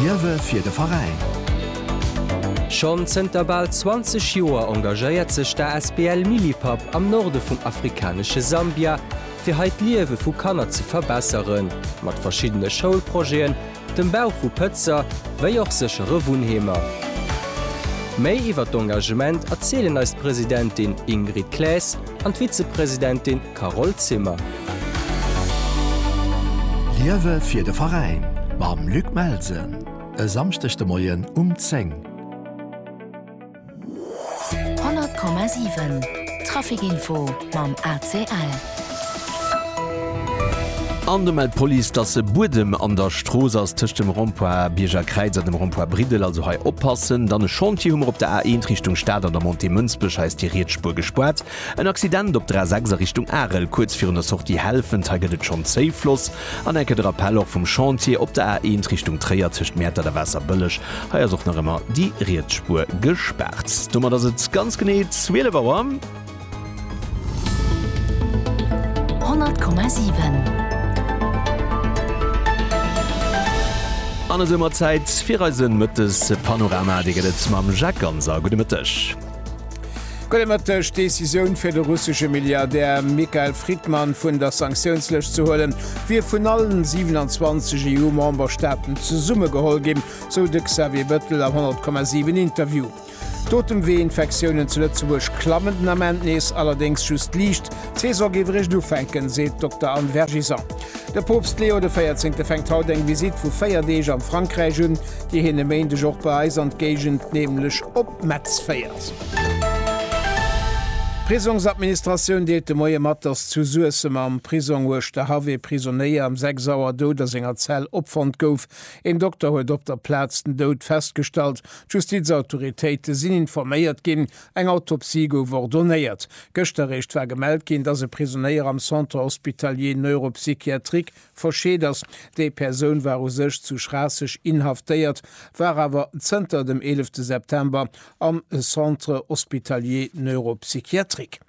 Wiewe fir de Veräin? Schonn zënter bal 20 Joer engagéiert sech d'ASBL Millipap am Norde vum afrikanesche Sambia, fir hei d'Liewe vu Kanner ze verbesseren, mat verschiddene Schoulprojeten, dem Bau vu Pëtzer, wéi och séchere Wunnheemer. Méi iwwer d'Engagement erzielen eis d'Presidentin Ingrid Claes an d'Vizepresidentin Carole Zimmer. Liewe fir de Veräin mam Luc Melsen e Samschdeg de Moien um 10. 100,7 Traficinfo mam ACL. An do mellt d'Police, dass e Buedem an der Strooss ass tëscht dem Rond-point Bierger Kräiz a dem Rond-point Briddel. Also hei oppassen. Dann e Chantier hu mer op der A1 Richtung Stad an der Montée Mënsbech. Hei ass déi riets Spuer gespaart. En Accident op der A6 a Richtung Arel, kuerz virun der Sortie Helfent. Hei gëtt et schonn zéi Floss an enke de Rappell och vum Chantier. Op der A1 Richtung Tréier tëscht Mäertert a Waasserbëlleg, hei ass och nach ëmmer déi riets Spuer gespaart. Domat ass et ganz genee 12 Auer. 100,7. An esou mat Zäit fir eise Mëttespanorama. Dee gëtt et mam Jacques Ganser. Gudde Mëtteg. Problematësch Decisioun fir de russesche Milliardär Mikhail Fridman vun der Sanktiounslëscht ze huelen, wier vun allen 27 EU-Memberstaaten zesummegeholl ginn, sou de Xavier Bëttel am 100,7 Interview. D'Otemwee-Infektiounen zu Lëtzebuerg klammen den Ament nees, allerdéngs just liicht. D'Saison géif eréischt ufänken, seet d'Dokter Anne Vergison. De Poopst Leo de Véierzéngte fänkt haut eng Visitt vu 4 Deeg am Frankräich un, déi hien e Méindeg och bei eis an d'Géigend, nämlech op. Metz féiert. D'Prisongsadministratioun deelt de Moie mat, datt zu Suessem am Prisong Uerschterhaff ee Prisonéier ëm 6 Auer dout a senger Zell opfonnt gouf. Een Dokter huet op der Plaz den Doud festgestallt. D'Justizautoritéite sinn informéiert ginn, eng Autopsie gouf ordonéiert. Gëscht eréischt war gemellt ginn, datt e Prisonéier am Centre hospitalier neuropsychiatrique Verscheet ass, déi Persoun war u sech zu Schraasseg inhaftéiert, war awer zënter dem 11 September am Centre hospitalier neuropsychiatrique.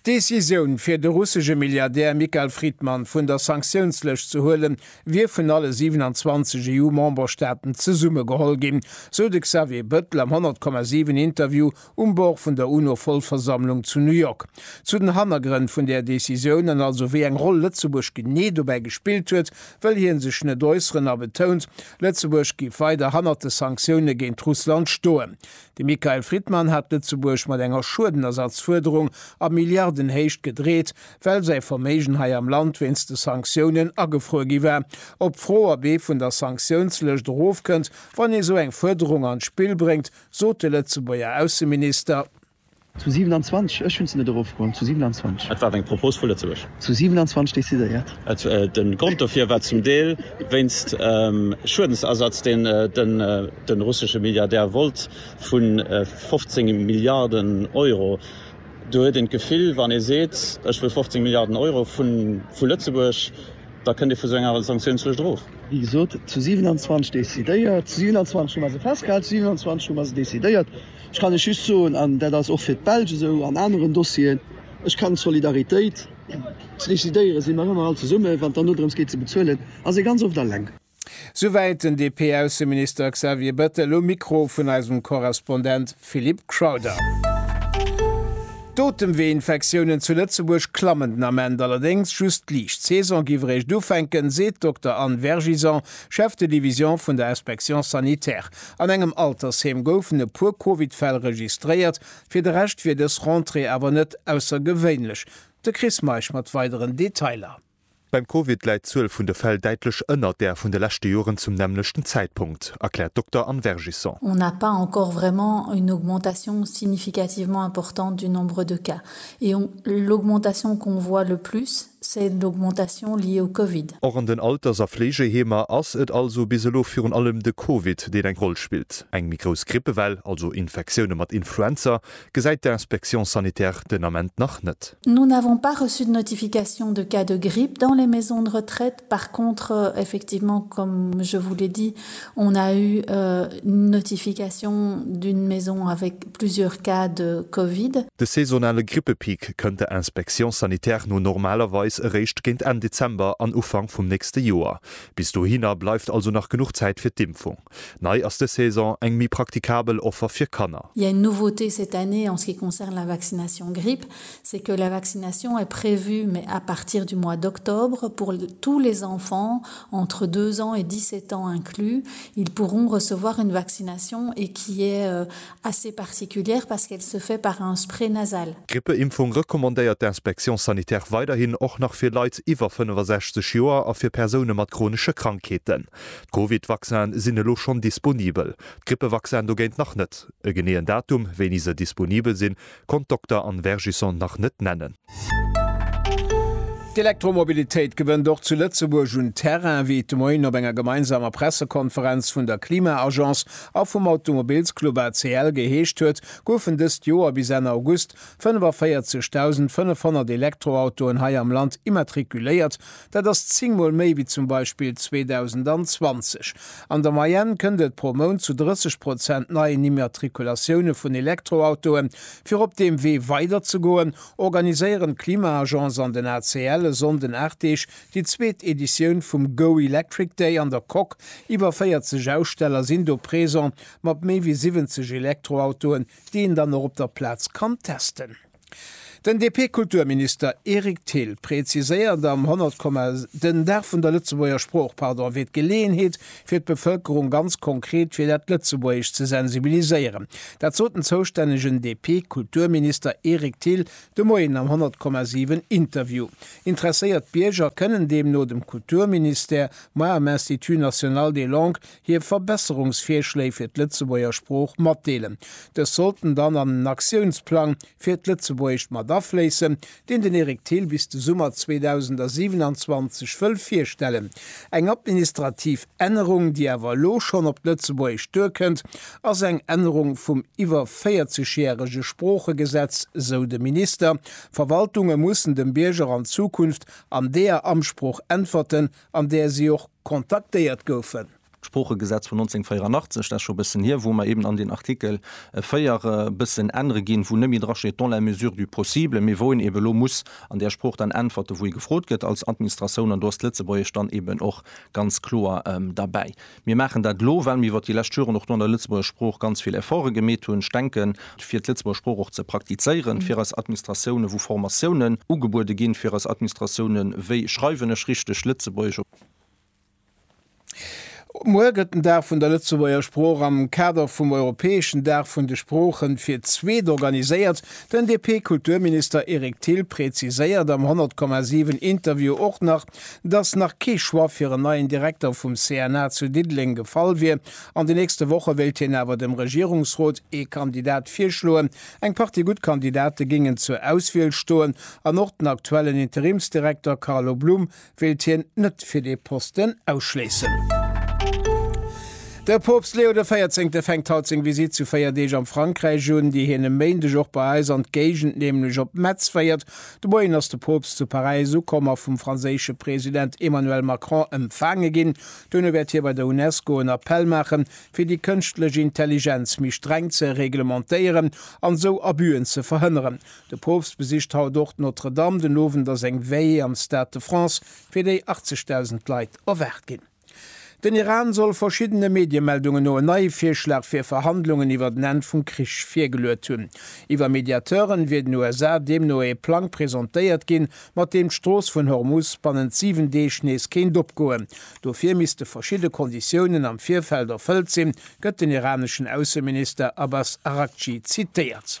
D'Decisioun, fir de russesche Milliardär Mikhail Fridman vun der Sanktiounslëscht ze huelen, wier vun alle 27 EU-Memberstaaten zesummegeholl ginn, sou de Xavier Bëttel am 100,7 Interview um Bord vun der UNO-Vollversammlung zu New York. Zu den Hannergrënn vun där Decisioun an also wéi eng Roll Lëtzebuerg genee dobäi gespillt huet, wëll hien sech net äusseren a betount, Lëtzebuerg géif weider hannert de Sanktioune géint Russland stoen. De Michael Friedman hat Lëtzebuerg mat enger Schuedenersatzfuerderung a Milliardenhéicht gedreet, well säi Verméigen hei am Land wéinst de Sanktiounen agefruer gi war. Op d'Fro, ob ee vun der Sanktiounslëscht erofkënnt, wann ee sou eng Fuerderung an d'Spill bréngt, sot de Lëtzebuerger Ausseminister. Zu 27, ech hunn se net erofgeholl, zu 27. Et war eng Propos vu Lëtzebuerg. Zu 27 decidéiert. De Grond dofir war zum Deel wéinst Schuedensersatz, deen de russesche Milliardär wollt, vu 15 Milliarden Euro. Do huet een d'Gefill, wann ee seet, ech wëll 15 Milliarden Euro vu Lëtzebuerg, da kënnt ee vu sou enger Sanktioun zwëschendrof. Wéi gesot, zu 27 decidéiert, zu 27 hu mer se festgehal, zu 27 hu mer se decidéiert. Ech kann lech just soen, an dat ass och fir d'Belsch esou an aneren Dossieren, Ech kann d'Solidaritéit ze decidéiere si mer ëmmer all zesummen, wann et dann nodrëms geet, se bezuelen, ass ee ganz oft eleng. Souwäit den DP-Ausseminister Xavier Bettel um Mikro vun eisem Korrespondent Philip Crowther. D'Otemweeinfektiounen zu Lëtzebuerg klammen den Ament allerdéngs just liicht. D'Saison géif eréischt ufänken, seet d'Dokter Anne Vergison, Chef de Division vun der Inspection sanitaire. An engem Altersheem goufen e puer Covid-Fäll registréiert. Fir de Rescht wier dës Rentrée awer net aussergewéinlech. De Chris Meisch mat weideren Detailer. Beim Covid läit d'Zuel vun de Fäll däitlech ënnert där vun de leschte Joren zum nämmlechten Zäitpunkt, erkläert d'Dokter Anne Vergisson. On n'a pas encore vraiment une augmentation significativement importante du nombre de cas et on l'augmentation qu'on voit le plus, c'est l'augmentation liée au Covid. Och an den Alters a Fleegeheemer ass et also bis elo virun allem de Covid, deen eng Roll spillt. Eng méi grouss Grippewell, also Infektioune mat Influenza, Gesäit d'Inspection sanitaire den Ament nach net. Nous n'avons pas reçu de notification de cas de grippe dans les maisons de retraite. Par contre, effectivement, comme je vous l'ai dit, on a eu une notification d'une maison avec plusieurs cas de covid. De saisonale Grippepeak kënnt der Inspection sanitaire no normalerweis eréischt géint Enn Dezember an Ufank vum nächste Joer. Bis dohinner bleift also nach genuch Zäit fir d'Impfung. Nei ass dës Saison eng méi praktikabel Offer fir Kanner. Il y a une nouveauté cette année en ce qui concerne la vaccination grippe, c'est que la vaccination est prévue, mais à partir du mois d'octobre, pour tous les enfants entre deux ans et dix-sept ans inclus, ils pourront recevoir une vaccination et qui est assez particulière parce qu'elle se fait par un spray nasal. D'Grippeimpfung recommandéiert d'Inspection sanitaire weiderhin och nach fir Leit iwwer 65 Joer a fir Persoune mat chronesche Krankheeten. D'Covid-Vaccine sinn elo schonn disponibel, d'Grippevaccine dogéint nach net. E geneeën Datum, wéini se disponibel sinn, konnt d'Dokter Anne Vergisson nach net nennen. D'Elektromobilitéit gewënnt och zu Lëtzebuerg un Terrain, wéi et de Moien op enger gemeinsamer Pressekonferenz vun der Klima-Agence a vum Automobilsclub ACL geheescht huet, goufen dëst Joer bis Enn August 45.500 Elektroautoen hei am Land immatrikuléiert, Dat ass zéng Mol méi wéi zum Beispill 2020. An der Moyenne kënnt et pro Mount zu 30 Prozent neien Immatrikulatioune vun Elektroautoe. Fir op deem Wee weider ze goen, organiséieren d'Klima-Agence an den ACL e Sonnden 8 Deeg déi zweet Editioun vum Go Electric Day an der Coque. Iwwer 40 Aussteller sinn do présent, mat méi wéi 70 Elektroautoen, déi een dann och op der Plaz kann testen. Den DP-Kulturminister Eric Thill präziséiert am 100 Komma den Dag vun der Lëtzebuerger Sprooch, pardon, wier d'Geleeënheet fir d'Bevëlkerung ganz konkret fir dat Lëtzebuergescht ze sensibiliséieren. Dat sot den zoustännegen DP-Kulturminister Eric Thill de Moien am 100 Komma 7 Interview. Interesséiert Bierger kënnen deemno dem Kulturministère, moi am Institut national des langues, hir Verbesserungsvirschléi fir d'Lëtzebuerger Sprooch matdeelen. Dës sollten dann an en Aktiounsplang fir d'Lëtzebuergescht mat afléissen, deen den Eric Thill bis de Summer 2027 wëll virstellen. Eng administrativ Ännerung, déi awer elo schonn op d'Lëtzebuergescht duerkënnt, ass eng Ännerung vum iwwer 40 järege Sproochegesetz, sou de Minister. Verwaltunge mussen dem Bierger an Zukunft an deeër Amtssprooch äntwerten, an där si och kontaktéiert goufen. D'Sproochegesetz vun 1984, dat ass scho e bëssen hier, wou mer eben an den Artikel 4 e bëssen ännere ginn, wou net méi drasteet dans la mesure du possible, mee wou een eben elo muss an där Sprooch dann äntwerte wou ee gefrot gëtt als Administratioun, an do ass d'Lëtzebuergesch dann eben och ganz kloer derbäi. Mir maachen dat elo, well mir iwwert déi lescht Joren och do an der Lëtzebuerger Sprooch ganz vill Efforte gemeet hunn. Ech denken, fir d'Lëtzebuerger Sprooch och ze praktizéieren, fir eis Administratiounen, wou Formatiounen ugebuede ginn, fir eis Administratiounen, wéi schreiwen ech richteg Lëtzebuergesch op. Muer gëtt den Dag vun der Lëtzebuerger Sprooch am Kader vum europäeschen Dag vun de Sproochen fir d'zweet organiséiert. Den DP-Kulturminister Eric Thill präziséiert am 100,7 Interview och nach, dass nach kee Choix fir en neien Direkter vum CNA zu Diddeleng gefall wier. An de nächste Woche wéilt hien awer dem Regierungsrot ee Kandidat virschloen. Eng Partie gutt Kandidate géingen zur Auswiel stoen an och den aktuellen Interimsdirekter Carlo Blum wéilt hien net fir dee Posten ausschléissen. De Poopst Leo de Véierzéngte fänkt haut seng Visitt zu véier Deeg am Frankräich un, déi hien e Méindeg och bei eis an d'Géigend, nämlech op Metz féiert. De Moien ass de Poopst zu Paräis ukomm a vum franséische President Emmanuel Macron empfaange ginn. Duerno wäert hie bei der Unesco en Appell maachen, fir déi kënschtlech Intelligenz méi streng ze reglementéieren an esou Abüen ze verhënneren. De Poopst besicht haut och d'Notre-Dame. Den Owend ass eng Veillée am Stade de France, fir déi 80.000 Leit erwaart ginn. Den Iran soll verschiddene Mediemeldungen no en neie Virschlag fir Verhandlungen iwwert en Enn vum Krich virgeluet hunn. Iwwer Mediateuren wier den USA deemno ee Plang presentéiert ginn, mat deem d'Strooss vun Hormuz bannent 7 Deeg nees kéint opgoen. Dofir misste verschidde Konditiounen am Virfeld erfëllt sinn, gëtt den iraneschen Ausseminister Abbas Araghchi zitéiert.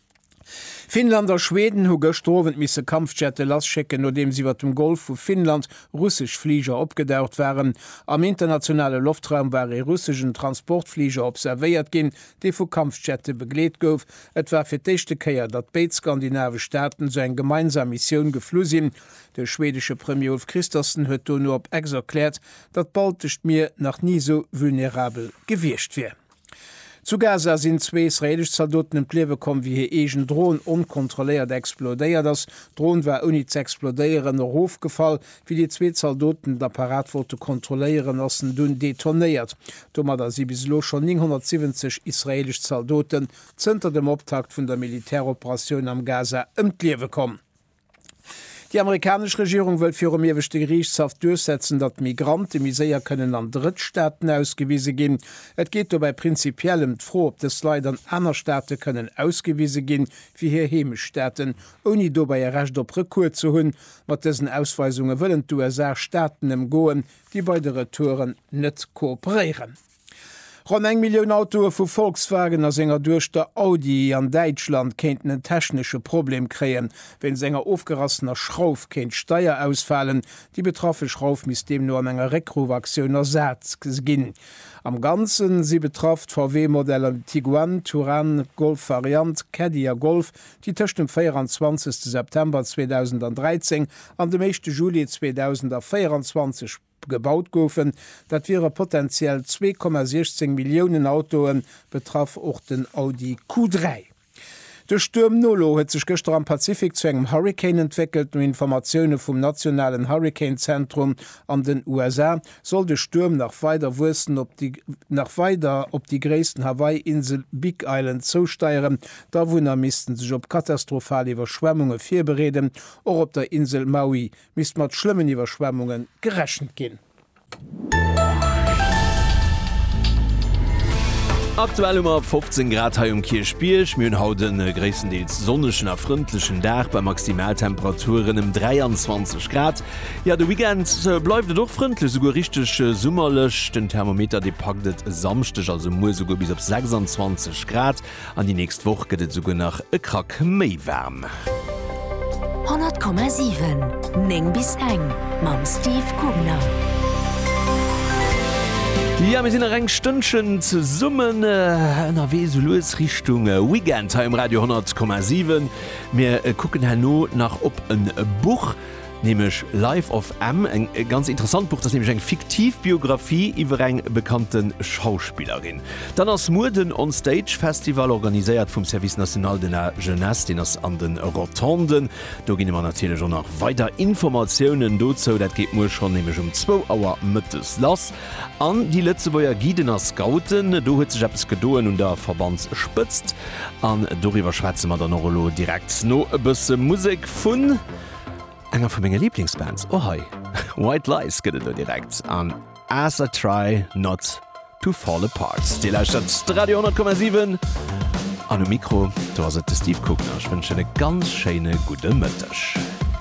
Finnland a Schweden hu gëschter Owend misse Kampfjette lasschécken, nodeems iwwer dem Golf vu Finnland russesch Fliger opgedaucht waren. Am internationale Loftraum war ee russeschen Transportfliger observéiert ginn, dee vu Kampfjette begleet gouf. Et war fir d'éischte Kéier, datt béid skandinavesch Staaten esou eng gemeinsam Missioun geflu sinn. De schwedesche Premier Ulf Kristersson huet dono op Ex erkläert, datt d'Baltescht Mier nach ni esou vulnerabel gewiescht wier. Zu Gaza sinn zwee israeelesch Zaldoten ëm d'Liewe komm, wéi hir eegen Dron onkontrolléiert explodéiert ass. D'Dron war ouni ze explodéieren erofgefall. Wéi déi zwee Zaldoten den Apparat wollte kontrolléieren, ass en dunn detonéiert. Domadder si bis elo schonn 970 israeelesch Zaldoten zënter dem Optakt vun der Militäroperatioun am Gaza ëm d'Liewe komm. Déi amerikanesch Regierung wëllt virum Ieweschte Geriichtshaff duerchsetzen, datt Migrante méi séier kënnen an Drëttstaaten ausgewise ginn. Et geet dobäi prinzipiell ëm d'Fro, ob dës Leit an aner Staate kënnen ausgewise gi wéi hir Heemechtsstaaten, ouni dobäi e Recht op Recours ze hunn. Mat dësen Ausweisunge wëllen d'USA Staaten ëmgoen, déi bei de Retouren net kooperéieren. Ronn eng Millioun Autoe vu Volkswagen a senger Duechter Audi an Däitschland kéinten en technesche Problem kréien. Wéinst enger ofgerassener Schrauf kéint d'Steier ausfalen. Déi betraffe Schrauf misst deemno an enger Réckruff-Aktioun ersat ginn. Am Ganze si betraff d'VW-Modeller de Tiguan, Touran, Golf Variant, Caddy a Golf, déi tëscht dem 24. September 2013 an dem éischte Juli 2024 gebaut goufen. Dat wiere potentiell 2,16 Milliounen Autoe, betraff och den Audi Q3. De Stuerm Nolo huet sech gëschter am Pazifik zu engem Hurrikan entwéckelt. No Informatioune vum nationalen Hurrikanzentrum an den USA soll de Stuerm nach weider wuessen op déi nach weider op déi gréissten Hawaii-Insel Big Island zousteieren. D'Awunner misste sech op katastrophal Iwwerschwemmunge virbereeden. Och op der Insel Maui misst mat schlëmmen Iwwerschwemmunge gerechent ginn. Aktuell hu mer 15 Grad hei um Kierchbierg. Mir hunn haut e gréisstendeels sonnegen a frëndlechen Dag bei Maximaltemperaturen ëm 23 Grad. Jo, de Weekend bleift et och frëndlech, esouguer richteg summerlech. Den Thermometer dee packt et e Samschdeg, also muer, esouguer bis op 26 Grad. An déi nächst Woch gëtt et esouguer nach e Krack méi waarm. 100,7 9 bis eng mam Steve Kugner. Jo, mir sinn nach eng Stënnchen zesummen ënnerwee, esou lues Richtung Weekend hei um Radio 100,7. Mir kucken herno nach op e Buch. Nämlech Life of M, eng ganz interessant Buch. Dat ass nämlech eng fiktiv Biographie iwwer eng bekannte Schauspillerin. Dann ass muer den On Stage Festival, organiséiert vum Service National de la Jeunesse. Deen ass an de Rotonden. Do ginn mer natierlech och nach weider Informatiounen dozou. Dat geet muer schonn nämlech um zwou Auer mëttes lass. An déi Lëtzebuerger Guiden a Scouten, do huet sech eppes gedoen un der Verbandsspëtzt. An doriwwer schwätze mer dann och elo direkt no e bësse Musek vun. Enger vu menge Liblingsbands, och hei. White Lies gëtt et elo direkt an As I Try Not To Fall Apart. Dir lauschtert d'Radio 10,7 an um Mikro, do ass et de Steve Kugner. Ech wënschen e ganz schéine gudde Mëtteg.